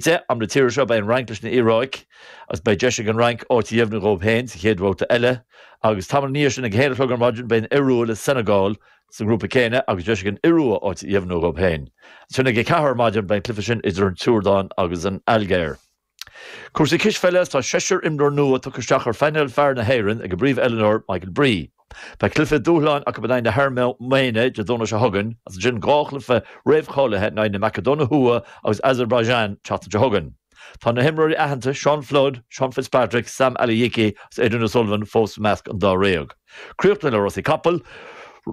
10 am na tíre seo, beidh an Fhrainc leis an Iaráic agus beidh deis ag an Fhrainc áit a dheimhniú dhóibh féin sa chéad bhabhta eile, agus tamall ina dhiaidh sin, ag a haon a chlog ar maidin, beidh an Iorua le Senegal sa ngrúpa céanna agus deis ag an Iorua áit a dheimhniú dhóibh féin. Ansin ag a ceathair ar maidin, beidh an cluiche sin idir an tSiúrdáin agus an Ailgéir. Cúrsaí cispheile, Tá seisear imreoir nua tugtha isteach ar phainéal fear na hÉireann ag a bpríomhoiliúnóir Michael Bree. Beidh cluife dúshláin acu in aghaidh na hAirméine Dé Domhnaigh seo chugainn, agus ansin dhá chluife réamhcháilithe in aghaidh na Macadóine Thuaidh agus Azerbaijan an tseachtain seo chugainn. Tá na himreoirí aitheanta Seán Flood, Seán Fitzpatrick, Sam Alajiki agus Adrian O'Sullivan fós i measc an dáréag. Críochnaíodh le rásaí capall,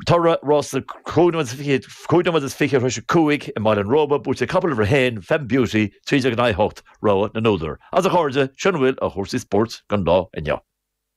toradh rás na cúig nóiméad is fiche tar éis a cúig i mBaile an Róba, buaite ag capall uimhir a haon, Fem Beauty, trí déag in aghaidh a hocht, rogha na n-údar. Agus a chairde, sin a bhfuil ó chúrsaí spóirt don lá inniu.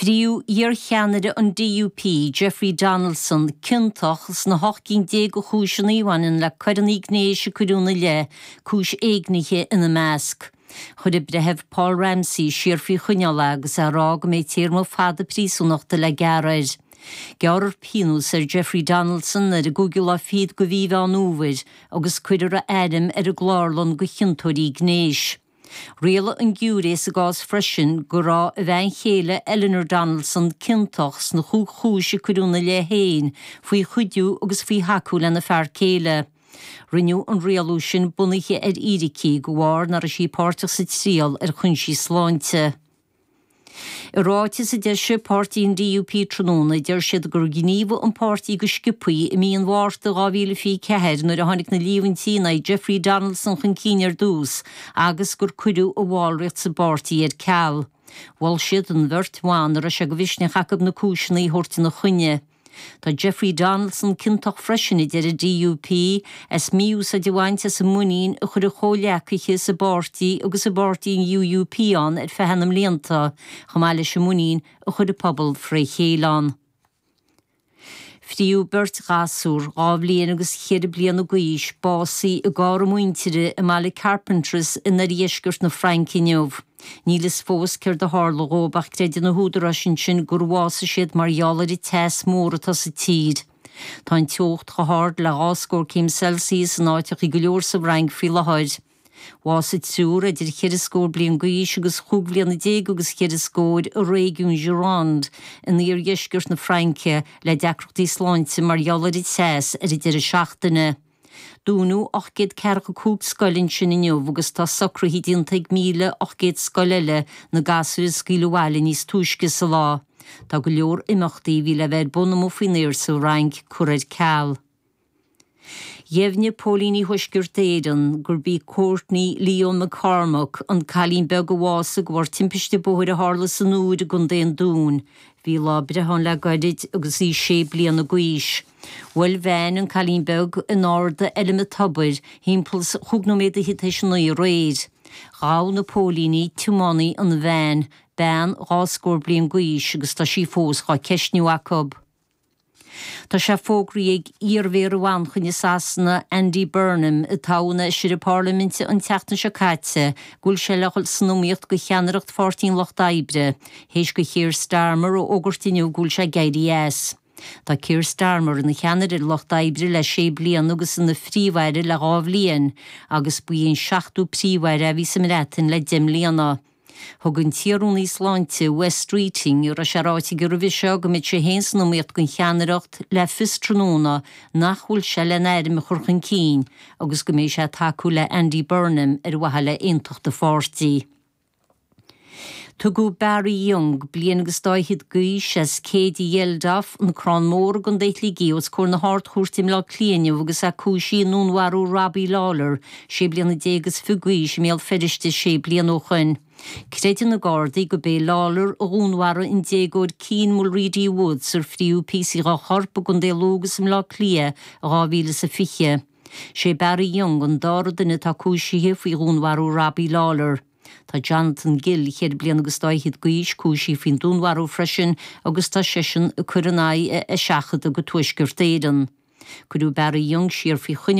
Fritheadh iarcheannaire an DUP, Jeffrey Donaldson, ciontach sna hocht gcinn déag de chúiseanna a bhaineann le coireanna gnéis a cuireadh ina leith, cúis éignithe ina measc. Chuir an Breitheamh Paul Ramsey siar faoi choinneáil é agus é ag rá go mbeidh téarma fada príosúnachta le gearradh air. Gearrfar pionós ar Jeffrey Donaldson ar an gcúigiú lá fichead de Mhí Mheán Fhómhair agus cuirfear a ainm ar an gclárlann de chiontóirí gnéis. Rialaigh an giúiré sa gcás freisin go raibh a bhean chéile Eleanor Donaldson ciontach sna chúig chúis a cuireadh ina leith féin faoi chuidiú agus faoi thacú lena fear céile. Rinneadh an rialú sin bunaithe ar fhíricí de bharr nach raibh sí páirteach sa triail ar chúinsí sláinte. I ráiteas a d'eisigh páirtí an DUP tráthnóna, deir siad gur ghníomhaigh an páirtí go sciobthaí i mí an Mhárta 2024 nuair a tháinig na líomhaintí in aghaidh Jeffrey Donaldson chun cinn ar dtús agus gur cuireadh a bhallraíocht sa bpáirtí ar ceal. Mhol siad an bheirt bhan a raibh sé de mhisneach acu na cúiseanna a thabhairt ina choinne. Tá Jeffrey Donaldson ciontach freisin, a deir an DUP, as mí-úsáid a bhaint as an muinín a chuir a chomhghleacaithe sa bpáirtí agus i bpáirtí an UUP ann ar feadh na mblianta, chomh maith leis an muinín a chuir an pobal fré chéile ann. Fritheadh beirt ghasúr, dhá bhliain agus cheithre bliana d'aois, básaithe i gcarr a muintire i mbaile Carpentras in oirdheisceart na Fraince inniu. Níl a fhios fós céard a tharla dhóibh ach creideann na húdaráis ansin gur bhásaigh siad mar gheall ar an teas mór atá sa tír. Tá an teocht chomh hard le dhá scór céim Celsius in áiteachaí go leor sa bhFrainc faoi latháir. Bhásaigh triúr idir cheithre scór bliain d'aois agus chúig bhliana déag agus cheithre scóir i réigiún Gironde in iardheisceart na Fraince le deacrachtaí sláinte mar gheall ar an teas ar an deireadh seachtaine. Dúnadh ocht gcéad ceathracha cúig scoil ansin inniu agus tá socruithe déanta ag míle ocht gcéad scoil eile na gasúir a scaoileadh abhaile níos túisce sa lá. Tá go leor imeachtaí a bhí le bheith ar bun amuigh faoin aer sa Fhrainc curtha ar ceal. Dheimhnigh Póilíní Thuaisceart Éireann gurb í Courtney Leo McCormack, an cailín beag a bhásaigh de bharr timpiste bóthair a tharla san Iúir i gContae an Dúin. Bhí lá breithe aici le gairid agus í sé bliana d'aois. Bhuail veain an cailín beag in Ard an Fheilm Tobair thimpeall is chúig nóiméad théis a naoi aréir. Ghabh na póilíní tiománaí an veain, bean dhá scór bliain d'aois agus tá sí fós dhá ceistniú acu. Tá sé fógraí ag iar-mhéara Mhanchain i Sasana, Andy Burnham, a toghadh ina fheisire parlaiminte an tseachtain seo caite, go bhfuil sé le dhul san iomaíocht go cheannaireacht Pháirtí an Lucht Oibre, théis do Kheir Starmer a fhógairt inniu go bhfuil sé ag éirí as. Tá Keir Starmer ina cheannaire ar an Lucht Oibre le sé bliana agus ina Phríomh-Aire le dhá bhliain, agus ba é an seachtú Príomh-Aire a bhí sa mBreatain le deich mbliana. Thug an t-iar-Rúnaí Sláinte, Wes Streeting, a raibh sé ráite aige roimhe seo go mbeadh sé féin san iomaíocht don cheannaireacht, le fios tráthnóna nach bhfuil sé lena ainm a chur chun cinn agus go mbeidh sé ag tacú le Andy Burnham ar mhaithe le aontacht an pháirtí. Tugadh Barry Young, bliain agus dá fhichead d'aois, as Céide Geldof, An Crann Mór i gContae Shligigh, os comhair na hArd-Chúirte i mBleá Cliath inniu agus é cúisithe i ndúnmharú Robbie Lawlor, sé bliana déag is fiche d'aois, i mBéal Feirste sé bliana ó shoin. Creideann na Gardaí gurb é Lawlor a dhúnmharaigh an déagóir Keane Mulready-Woods ar fríothadh píosaí dá chorp i gContae Lú agus i mBleá Cliath in 2020. Sé Barry Young an dára duine atá cúisithe faoi dhúnmharú Robbie Lawlor. Tá Jonathan Gill, cheithre bliana agus dá fhichead d'aois, cúisithe faoin dúnmharú freisin agus tá seisean ag cur in aghaidh a eiseachadta go Tuaisceart Éireann. Cuireadh Barry Young siar faoi choinneáil.